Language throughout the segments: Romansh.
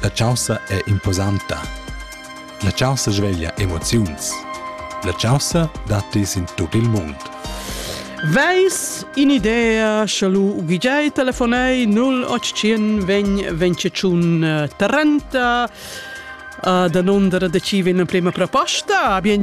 La chaussa è imposanta. La chaussa sveglia emoziuns. La chaussa datti in tut il mund. Veis in idea sche lu gijai telefonei 0800 vegn 25 30 da nondere decide in prima proposta. Bien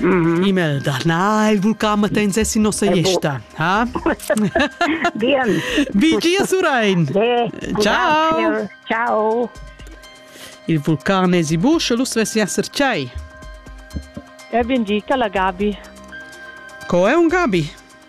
E-mail da na, il vulcan matens è in nossa gesta. Ha? Bien. Vi dir, Surein. Ciao. Ciao. Il vulcan è si buscio, l'us vessi essere cei. E ben dica la Gabi. Co è un Gabi?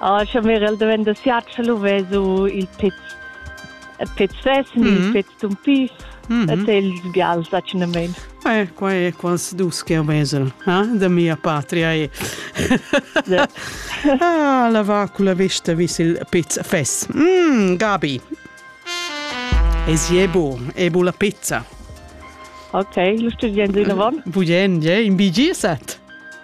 Ah, scha mirel daventa siat, scha lu vesu il pez. Il pez vessen, mm. il mhm. pez tun pis, mm -hmm. et ils bials accidentamein. Eh, qua è quasi dus che vesel, eh? da mia patria è. ah, la va con la vista vis il pizza fes. Mm, Gabi. E si è bu, è bu la pizza. Ok, lo sto dicendo in avant. Vogliamo, in BG set.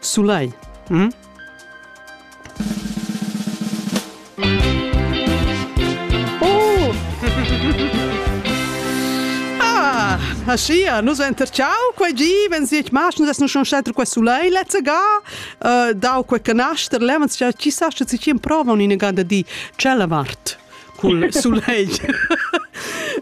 Sulai. Hm? Oh! ah, Aschia, nus enterciau quei gi, wenn sie mach, nus essen schon scetter quei sulai letzte ga, uh, dau quei canaster, levens, chi sa, che si prova in ganda di, cella vart. cul sulegl.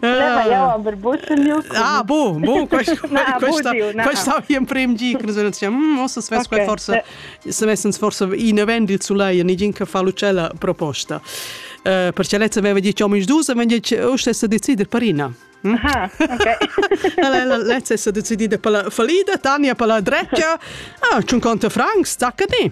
Aveva jau aber buttenmiu. Ah, bu, bu, questa, Na, questa, budiu, na. questa habe ich im Prem gi, che nus dicem, hm, ossa svess okay. quel forse, se messens forse in event il sulegl, nigin che fa l'ucella proposta. Uh, perché lezza aveva dieci uomini dus, aveva dieci, o stessa decider parina. Hm? Aha, ok. Lezza è stata decidida per la fallida, Tania per la drecia. Ah, c'è un conto Franks, zacca di.